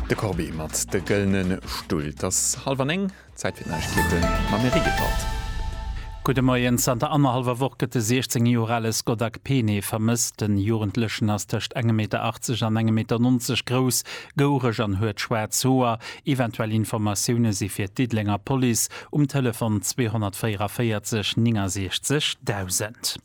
De Corbet mat de gëllene Stull. Et ass hallef an éng, Zäit fir d'Neiegkeeten mam Eric Gebhardt. Gudde Moien, Zanter annerhallwer Woch gëtt de 16 Joer ale Scott Akpene vermësst. Den Jugendlechen ass tëscht engem Meter 80 an engem Meter 90 grouss, goureg an huet schwaarz Hoer. Eventuell Informatioune si fir d'Diddelenger Police um Telefon 244 69 1000.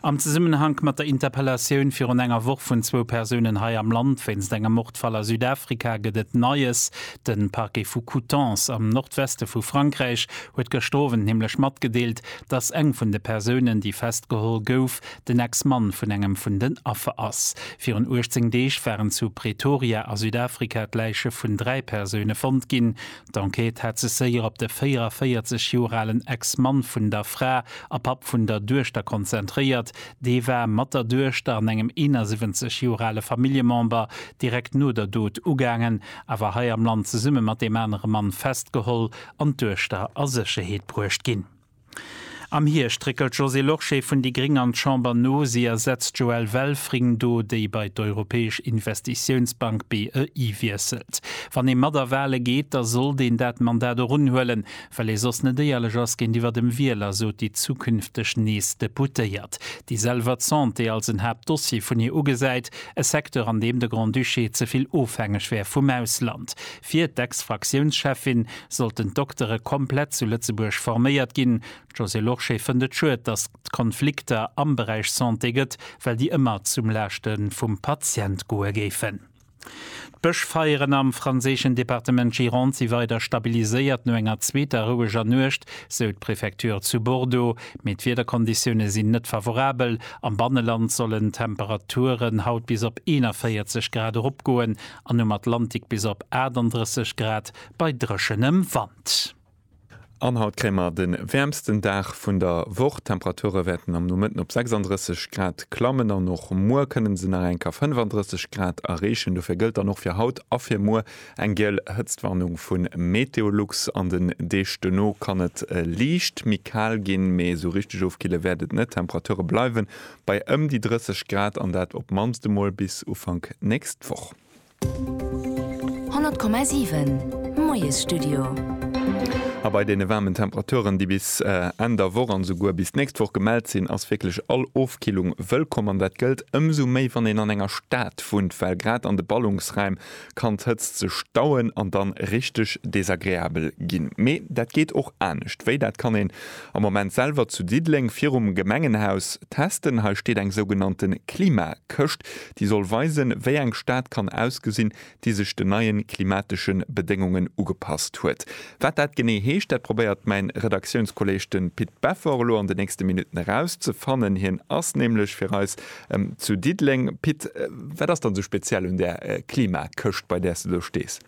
Am Zesummenhank mat der Interpellatioun virun enger Woch vun zwou Persounen hei am Land wéinst engem Mordfall a Südafrika gëtt et Neies. De Parquet vu Coutances am Nordweste vu Frankräich huet gëschter Owend nämlech matgedeelt, datt eng vun de Persounen, déi festgeholl gouf, den Ex-Mann vun engem vun den Affer ass. Virun 18 Deeg waren zu Pretoria a Südafrika d'Läiche vun dräi Persoune fonnt ginn. D'Enquête hat sech séier op de 44 Joer alen Ex-Mann vun der Fra a Papp vun der Duechter konzentréiert. Dee war mat der Duechter an engem 71 Joer ale Familljemember direkt no der Dot ugaangen, awer hei am Land zesumme mat deem anere Mann festgeholl an d'Duechter a Sécherheet bruecht ginn. Am Hierscht réckelt d'Josée Lorsché vun déi gréng an d'Chamber no. Si ersetzt d'Joëlle Welfring do, déi bei d'Europäesch Investitiounsbank, BEI, wiesselt. Wann ee mat a Wahle geet, da sollt een dat Mandat och unhuelen, well ee soss net éierlech ass géintiwwer dem Wieler, sot déi zukünfteg nees Deputéiert, déi selwer d'Santé als en Haaptdossier vun hir ugesäit, e Secteur, an deem de Grand-Duché ze vill ofhängeg wär vum Ausland. Fir d'Ex-Fraktiounscheffin sollten d'Doktere komplett zu Lëtzebuerg forméiert ginn. D'Josée Lorsché fënnt et schued, datt et Konflikter am Beräich Santé gëtt, well déi ëmmer zum Laaschte vum Patient goe géifen. D'Bëschfeieren am franséischen Departement Gironde si weider stabiliséiert no enger zweeter roueger Nuecht, sou d'Prefecture zu Bordeaux. Mee d'Wiederkonditioune sinn net favorabel. Am Banneland sollen d'Temperaturen haut bis op 41 Grad eropgoen an um Atlantik bis op 38 Grad bei dréchenem Wand. An haut kréie mer de wäermsten Dag vun der Woch. D'Temperature wäerten am Nomëtten op 36 Grad klammen an och muer kënne se nach enker 35 Grad erreechen. Dofir gëllt dann och fir haut a fir muer eng giel Hëtztwarnung vu Meteolux. An den Deeg duerno kann et liicht méi kal ginn, mee esou richteg ofkille wäert et net. D'Temperature bleiwe bei ëm déi 30 Grad an dat op d'mannst emol bis Ufank nächst Woch. 100,7 Moiesstudio. A bei deene waarmen Temperaturen, déi bis Enn der Woch an esouguer bis d'nächst Woch gemellt sinn, ass wierklech all Ofkillung wëllkomm. An dat gëllt ëmsou méi, wann een an enger Stad wunnt, well grad an de Ballungsraim kann d'Hëtzt sech stauen an dann richteg desagreabel ginn. Mee dat geet och anescht. Wéi? Dat kann een am Moment selwer zu Diddeleng virum Gemengenhaus testen. Hei steet eng sougenannte Klimakëscht, déi soll weisen, wéi eng Stad kann ausgesinn, déi sech den neie klimatesche Bedéngungen ugepasst huet. Wat dat genee heescht, dat probéiert mäin Redaktiounskolleeg, de Pit Beffer, elo an de nächste Minutten erauszefannen. Hien ass nämlech fir eis Zu Diddeleng, Pit, wat ass dann esou speziell un där Klimakëscht, bei där s de do stees?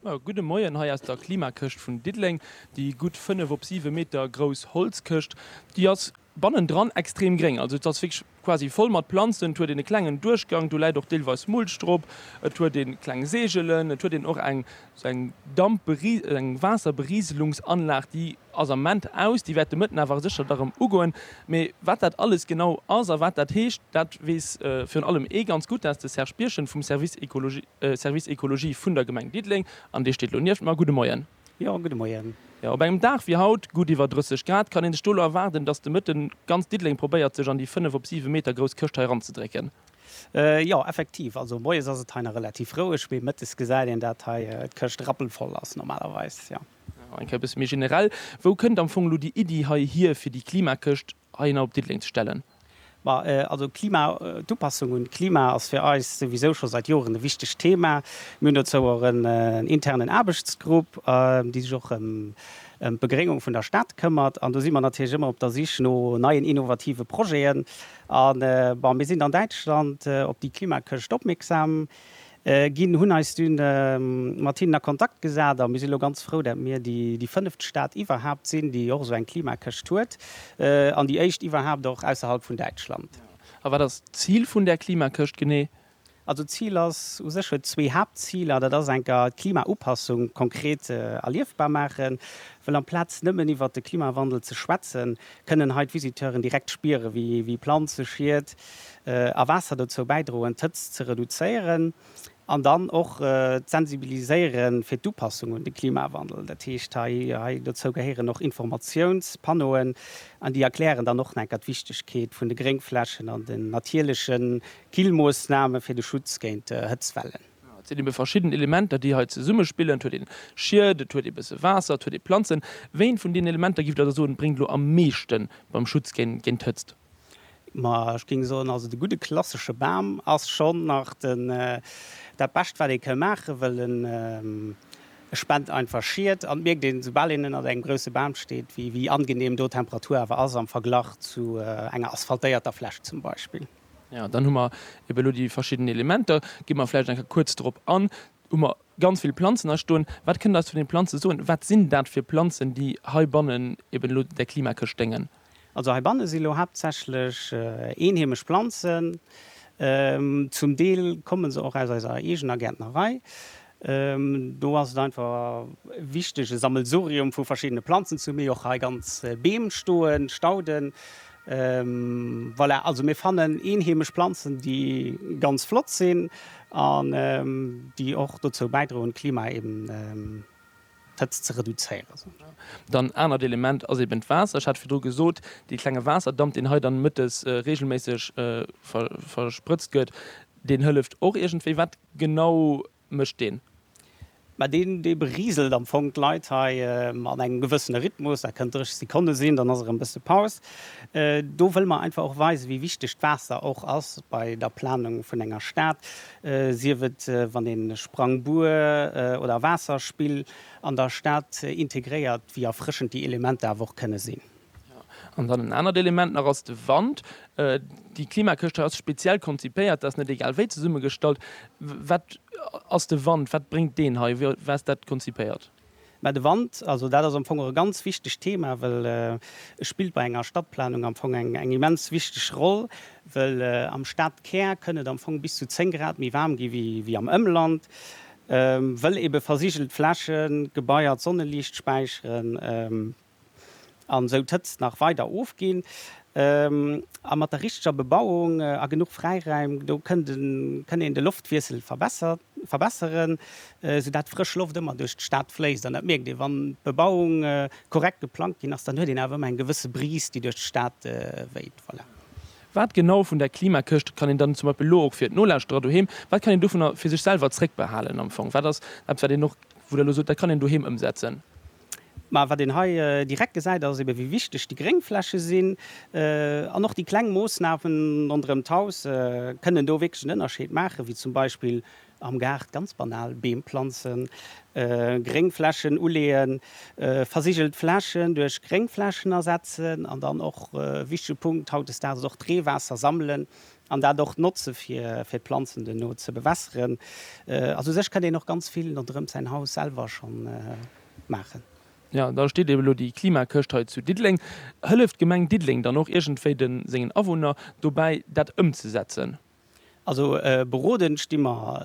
Jo, gudde Moien hei aus der Klimakëscht vun Diddeleng. Déi gutt 5 op 7 Meter grouss Holzkëscht, déi ass bannendran extrem gréng. Also et ass wierklech quasi voll mat Planzen. Et huet een e klengen Duerchgang, do läit och deelweis Mulch drop. Et huet ee kleng Segelen, et huet een och eng Sou eng Dampberi-, eng Waasserberiselungsanlag, déi ass am Moment aus. Déi wäert de Mëtten awer sécher da rëm ugoen. Mee wat dat alles genau ass a wat dat heescht, dat weess virun allem ee ganz gutt, dat ass de Serge Birchen vum Service Ecologie, Service Ecologie vun der Gemeng Diddeleng. An dee steet elo nieft mer. Gudde Moien. Jo, gudde Moien. Jo, op engem Dag wéi haut, gutt iwwer 30 Grad, kann ee sech do elo erwaarden, dass de Mëtten ganz Diddeleng probéiert, sech an déi 5 op 7 Meter grouss Këscht hei eranzedrécken? Jo, effektiv. Also moies ass et hei nach relativ roueg, mee mëttes gesäit een dat hei d'Këscht rappelvoll ass normalerweis, jo. Eng Kéier e bësse méi generell, Wou kënnt am Fong elo déi Iddi hei hier, fir déi Klimakëscht heihinner op Diddeleng ze stellen? Ma also d'Klima, d'Upassung un d'Klima ass fir eis souwisou scho säit Joren e wichtegt Thema. Mir hunn dozou och en internen Aarbechtsgrupp, dee sech och ëm d'Begréngung vun der Stad këmmert. An do si mer natierlech ëmmer op der Sich no neien innovative Projeten. A bon, mir sinn an Däitschland op déi Klimakëscht opmierksam ginn, hunn eis dunn mat hinnen a Kontakt gesat a mir sinn elo ganz frou, dat mir déi fënneft Stad iwwerhaapt sinn, déi och esou eng Klimakëscht huet an déi éischt iwwerhaapt och ausserhalb vun Däitschland. A wat ass d'Zil vun där Klimakëscht genee? Also d'Zil ass u sech, huet zwee Haaptziler. Dat ass enker d'Klimaupassung konkret erliefbar maachen, wëll amplaz nëmmen iwwert de Klimawandel ze schwätzen, kënnen hei d'Visiteuren direkt spieren, wéi Planze, Schiet a Waasser dozou bäidroen, d'Hëtzt ze reduzéieren an dann och d'Sensibiliséiere fir d'Upassung un de Klimawandel. Dat heescht, hei dozou gehéieren och Informatiounspannoen an déi erklären dann och enker d'Wichtegkeet vun de Gréngflächen an den natierleche Killmoossname fir de Schutz géint Hëtztwellen. Et sinn ebe verschidden Elementer, déi hei zesummespillen. Et huet een Schied, et huet ee bësse Waasser, et huet ee Planzen. Wéint vun deenen Elementer giff Der da soen, bréngt elo am meeschten beim Schutz géint d'Hëtzt? Ma ech géing soen, also de gudde klassesche Bam ass schonn nach den, dat Bescht wat ee ka maachen, well en, e spent einfach Schied an et mierkt een, soubal een ënnert engem grousse Bam steet, wéi angeneem do d'Temperatur awer ass am Verglach zu enger asphaltéierter Fläch zum Beispill. Jo, dann hu mer ebe elo déi verschidden Elementer. Gi mer vläicht eng Kéier kuerz drop an. Hu mer ganz vill Planzen hei stoen. Wat kënnt Der eis zu deene Planze soen? Wat sinn dat fir Planzen, déi heibannen eben elo där Klimakëscht déngen? Also heibanne si elo haaptsächlech eenheemesch Planzen. Zum Deel komme se och aus eiser eegener Gäertnerei. Do ass et einfach wichteg e Sammelsurium vu verschiddene Planzen ze hunn. Mir hu och hei ganz Beem stoen, Stauden. Voilà, also mir fannen eenheemesch Planzen, déi ganz flott sinn an déi och dozou bäidroen d'Klima eben d'Hëtzt ze reduzéieren. Dann anert Element ass eben d'Waasser. Ech hat virdru gesot, dee klenge Waasserdamp, deen hei dann mëttes reegelméisseg versprëtzt gëtt, deen hëlleft och iergendwéi. Wat genau mécht deen? Mä deen, dee beriselt am Fong d'Leit hei an engem gewëssene Rhythmus. Dat kënnt 30 Sekonne sinn, dann ass erëm e bësse Paus. Do wëlle mer einfach och weisen, wéi wichteg d'Waasser och ass bei der Planung vun enger Stad. sief et wann ee Sprangbuer oder Waasserspill an der Stad integréiert, wéi erfrëschend déi Elementer awer och kënne sinn. An dann en anert Element nach ass de Wand. Déi Klimakëscht hei ass speziell konzipéiert, dat ass net egal wéi zesummegestallt. Wat ass de Wand, wat bréngt deen hei, wéi ass dat konzipéiert? Mä de Wand, also dat ass am Fong och e ganz wichtegt Thema, well e spillt bei enger Stadplanung am Fong eng immens wichteg Roll, well am Stadkär kënn et am Fong bis zu 10 Grad méi waarm gi wéi am Ëmland, well eebe versigelt Flächen, Gebaier d'Sonneliicht späicheren. an esou d'Hëtzt nach weider ofginn. A mat der richteger Bebauung a genuch Fräiraim do kënnt een de Loftwiessel verbesseren, esou dat frësch Loft ëmmer duerch d'Stad fléisst. An dat mierkt ee wann d'Bebauung korrekt geplangt ginn ass, dann huet een awer ëmmer eng gewësse Brise déi duerch d'Stad wéit. Voilà. Wat genau vun där Klimakëscht kann een dann zum Beispill elo och fir d'Nolauschterer doheem, wat kann een dovunner fir sech selwer zréckbehalen am Fong? Wat ass eppes wat een och, wou der elo sot dat kann een doheem ëmsetzen? Mä wat een hei direkt gesäit, ass ebe wéi wichteg déi Gréngfläche sinn. An och déi kleng Moossnamen ronderëm d'Haus kënnen do wierklech en Ënnerscheed maachen, wéi zum Beispill am Gaart, ganz banal, Beem planzen, Gréngflächen uleeën, versigelt Flächen duerch Gréngflächen ersetzen. An dann och e wichtege Punkt hautdesdaags ass och d'Reewaasser sammelen, An dat och notze fir d'Planzen duerno ze bewässeren. Also u sech kënnt een och ganz vill ronderëm säin Haus selwer scho maachen. Jo, da steet eben elo déi Klimakëscht hei zu Diddeleng. Hëlleft d'Gemeng Diddeleng dann och iergendwéi de sengen Awunner dobäi, dat ëmzesetzen? Also beroden sti mer.